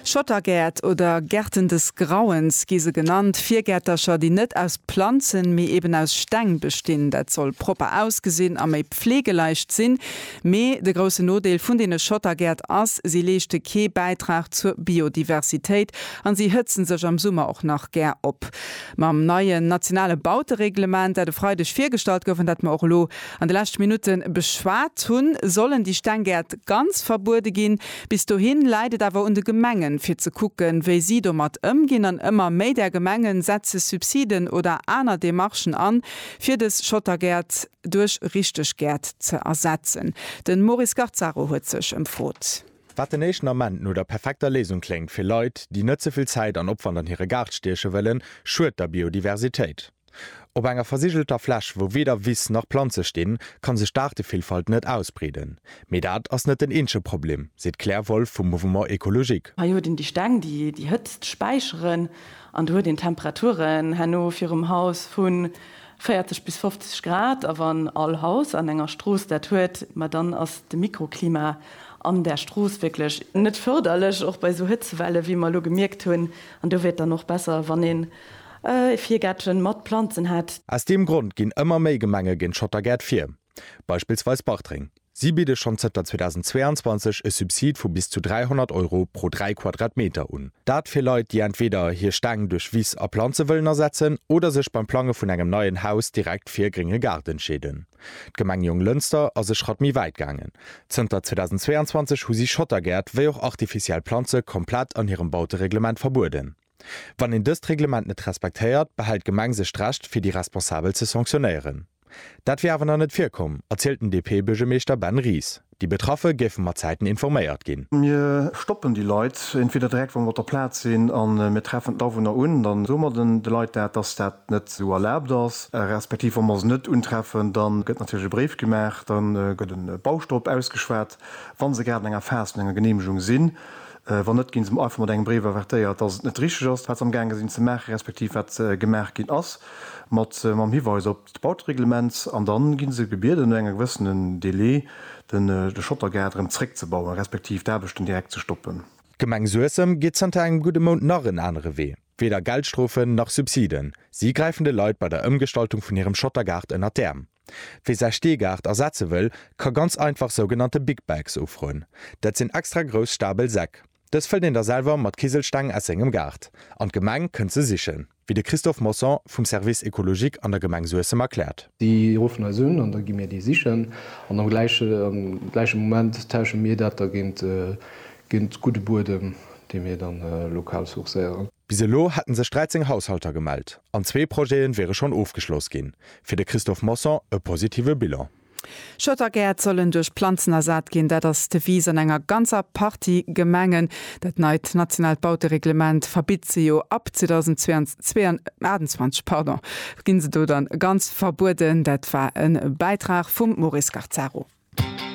Schottergäert oder Gärten des Grauens gi se genannt, Virgäertercher, déi net aus Planzen, mee eben aus Steng bestinn. Dat soll propper ausgesinn a méi pflegeleicht sinn. Mee de groussen Nodeel vun deene Schottergäert ass, si leeschte kee Bäitrag zur Biodiversitéit an si hëtzen sech am Summer och nach gär op. Mam neien nationale Bautereglement, dat e Freideg virgestallt gouf an dat mer och elo An de leschte Minutte beschwat hunn, sollen déi Stenggäert ganz verbuede ginn. Bis dohin läit et awer un de Gemengen, fir ze kucken, wéi si domat ëmginn. An ëmmer méi där Gemengen setze Subsiden oder aner Demarchen an, fir dës Schottergäert duerch richteg Gäert ze ersetzen. De Maurice Garzaro huet sech ëmfrot. Wat den éischten Ament no der perfekter Léisung kléngt fir Leit, déi net ze vill Zäit an Opwand an hire Gaart stieche wëllen, schued der Biodiversitéit. Op enger versigelter Fläch, wou weder Wiss nach Planze stinn, ka sech d'Aartevillfalt net ausbreeden. Mee dat ass net den eenzege Problem, seet d'Claire Wolff vum Mouvement Ecologique. Hei huet een déi Steng, déi déi Hëtzt späicheren, an do huet een Temperaturen herno virum Haus vu 40 bis 50 Grad. A wann all Haus an enger Strooss dat huet, ma dann ass de Mikroklima an där Strooss wierklech net fërderlech, och bei esou Hëtzewelle wéi mer elo gemierkt hunn. An do wier et dann och besser, wann een E Virgäertchen mat Planzen hat. Aus deem Grond ginn ëmmer méi Gemenge géint Schottergäert vir. Beispillsweis Bartreng. Si bidde schonn zënter 2022 e Subsid vu bis zu 300 Euro pro 3 Quadratmeter un. Dat fir Leit, déi entweder hir Stäng duerch Wiss a Planze wëllen ersetzen oder sech beim Plange vun engem neien Haus direkt fir e grénge Gaart entscheeden. D'Gemeng Jonglënster ass e Schratt méi wäit gaangen. Zënter 2022 hu si Schottergäert wéi och artificiell Planze komplett an hirem Bautereglement verbueden. Wann een dëst Reglement net respektéiert, behält d'Gemeng sech d'Recht, fir déi Responsabel ze sanktionéieren. Dat wier awer nach net virkomm, erzielt den DP-Buergermeeschter Ben Ries. Déi Betraffe géife mat Zäiten informéiert ginn. Mir stoppen déi Leit entweder direkt, wa mer op der Plaz sinn, a mir treffen d'Awunner un. Dann soe mer de Leit dat, dass dat net esou erlaabt ass. Respektiv wa mer se net untreffen, da gëtt natierlech e Bréif gemaach, da gëtt e Bauschtop ausgeschwat, wa se grad an enger Phas vun enger Geneemegung sinn. Wann net, ginn se mer einfach mat engem Bréif avertéiert, dass et net richteg ass, wat se amgaange sinn ze maachen, respektiv wat gemaach ginn ass, mat mam Hiweis op d'Bautereglement. An da gi se gebieden, no engem gewëssenen Delai den de Schottergaart erëm zréckzebauen, respektiv d'Aarbechten direkt ze stoppen. D'Gemeng Suessem geet zënter engem gudde Mount nach en anere Wee. Weder Geldstrofen nach Subsiden, si gräifen de Leit bei der Ëmgestaltung vun hirem Schottergaart ënner d'Äerm. Wie säi Steegaart ersetze wëll, ka ganz einfach sougenannte Big Bags ufroen. Dat sinn extra grouss stabel Säck. Dës fëllt een da selwer mat Kiselsteng aus sengem Gaart an d'Gemeng kënnt se sichen, wéi de Christophe Mosson vum Service écologique an der Gemeng Suessem erkläert. Si ruffen eis un an da gi mir déi sichen an am gläiche Moment tausche mir dat da géint gudde Buedem, dee mir da lokal sourcéieren. Bis elo hätten sech 13 Haushalter gemellt an zwee Projete wiere schonn ofgeschloss ginn. Fir de Christophe Mosson e positive Bilan. Schottergäert sollen duerch Planzen ersat ginn. Dat ass d'Devise an enger ganzer Partie Gemengen. Dat neit nationaalt Bautereglement verbitt se jo. Ab 2028 ginn se do dann ganz verbueden. Dat war e Bäitrag vum Maurice Garzaro.